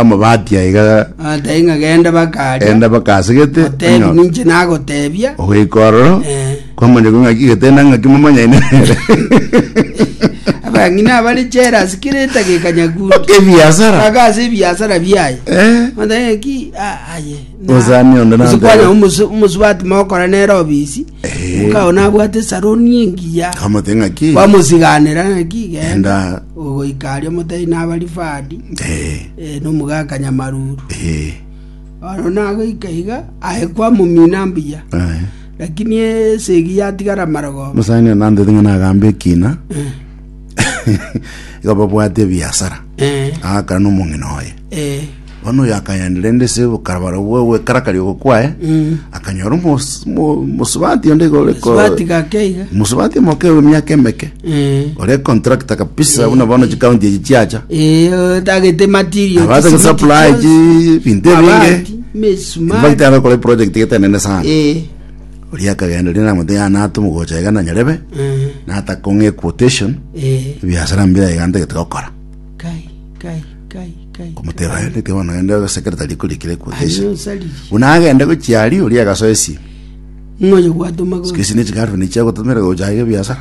bamobati aiga Atai ng'a genda bakaria. enda bakasegete Otebi onyo- ninche nagotebia. ogoika ororo Eh. kwamanyekwa ng'aki getena ng'aki momanyaine nere Abang'ina abare jealous kera etageka nyakunde. mpaka ebiasara Mpaka ase ebiasara biaye. Eh, Mataye ki ah, aye. Osani onde nante. Kwanya omusu omusubati mokora nere obisi. Omokao nabwate esaroni engiya, Amote ng'aki. bamosiganera ng'aki genda Genda. ogoika aria motari nabarifadi Eh, eh, nomogaka nyamaruru eh, ono nagoika iga aye kwamomina mbuya eh. lakini esegi yatigara marogoba Musani anandete ng'a nagambe ekina. Iga babwate ebiasara. Eh, Agakana n'omong'ina oye. eh, Bono oyo akagenda rende ase bokarabara bwa gwekarakari ogo kwaye akanyora omos- mo- omosubati onde iga ore ko- Sibati gake iga. omusubati omoke w'emiaka emeke Eh. ore contractor kabisa buna bono chikaunti echi chiacha Eh, otagete material. abaza chisimiti gisupply chionsi, chi binto ebinge mabati, misumari. infact agakora eproject etenene sana Eh, oria akagenda rende namote yanata omogocha iga na nyarebe eh, natakong'a equotation eh, ebiasara mbira iga ntagete gokora kai, kai. Komoteba, Aye reke bono ogende ogaseke rita riku rikire kwocha ise. Buna agende gochia aria, oria agasoa esio. Siko isi ne chigirlfriend echio agototomera gocha aye gebiasara?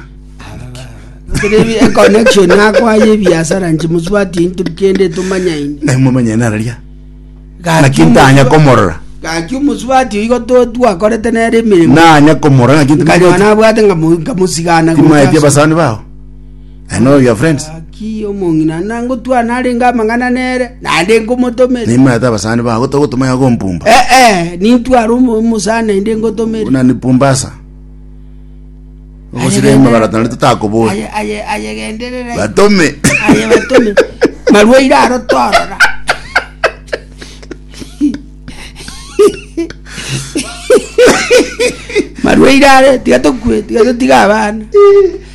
connection akwa yebiasara nchimoswatie into kende tomanyaine Na momenye nara ria. Naki ntanya komorora. gaki omoswati igo to- twakorete nere emeremo Nanya komorora naki nkanywa ntanya. nabwate ngamo- nkamosigana gocha. Timaeti abasani bao. Aye noyo your friends? Gaki omong'ina nangotwa narenge amang'ana nere, naende ngomotomere. Naimana ata abasani bago togotoma yago ompumba. Eh, eh, nintware omo- omosani naende ngotomere. Buna ni pumbasa. Ogosira emebara tari totakobori. Aye- aye- ayegenderere. Batome. Aye batome. Marwaire aro torora. Marwaire are, tiga tokwe, tiga totige abana.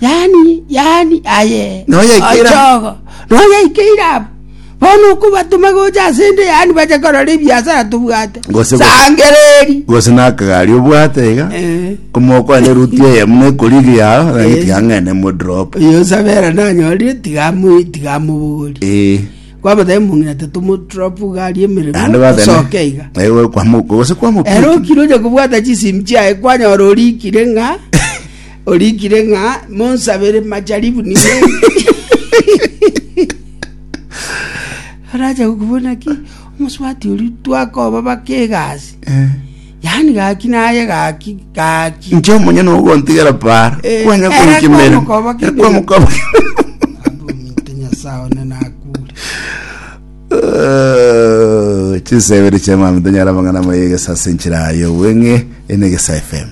yaani, aye, ochogo, noyaikeire abo, bono okobatoma gocha ase ende, yaani bache korora ebiasara tobwate, Gose- sangereri. gose nakagari obwate iga Eh. omokwane ruti eye muna ekorigi yao nagiti ang'ene modrop Oyo osabera nanyorire tigamu tigamubugori. ee Kwabata mungina tatumu drop gari ande emeremo batene soke iga. ewe kwamuko gose kwamuko Ero kiro je kubwata chisim chiaye kwanyora orikire ng'a Orikire ng'a monsabere majaribu nigo arache gokobuna ki omosubati oria twakoba bake egasi Eh. yaani gaki naye gaki gaki Nche omonyene ogontigera para. Eh, Kwanya era konkimera. kwamokoba kebere. Kwamokoba. abomite nyasaye one nakure Eh, Chisebere chia mami tonyara mang'ana moyege sase nchirayo weng'e ene gesa FM.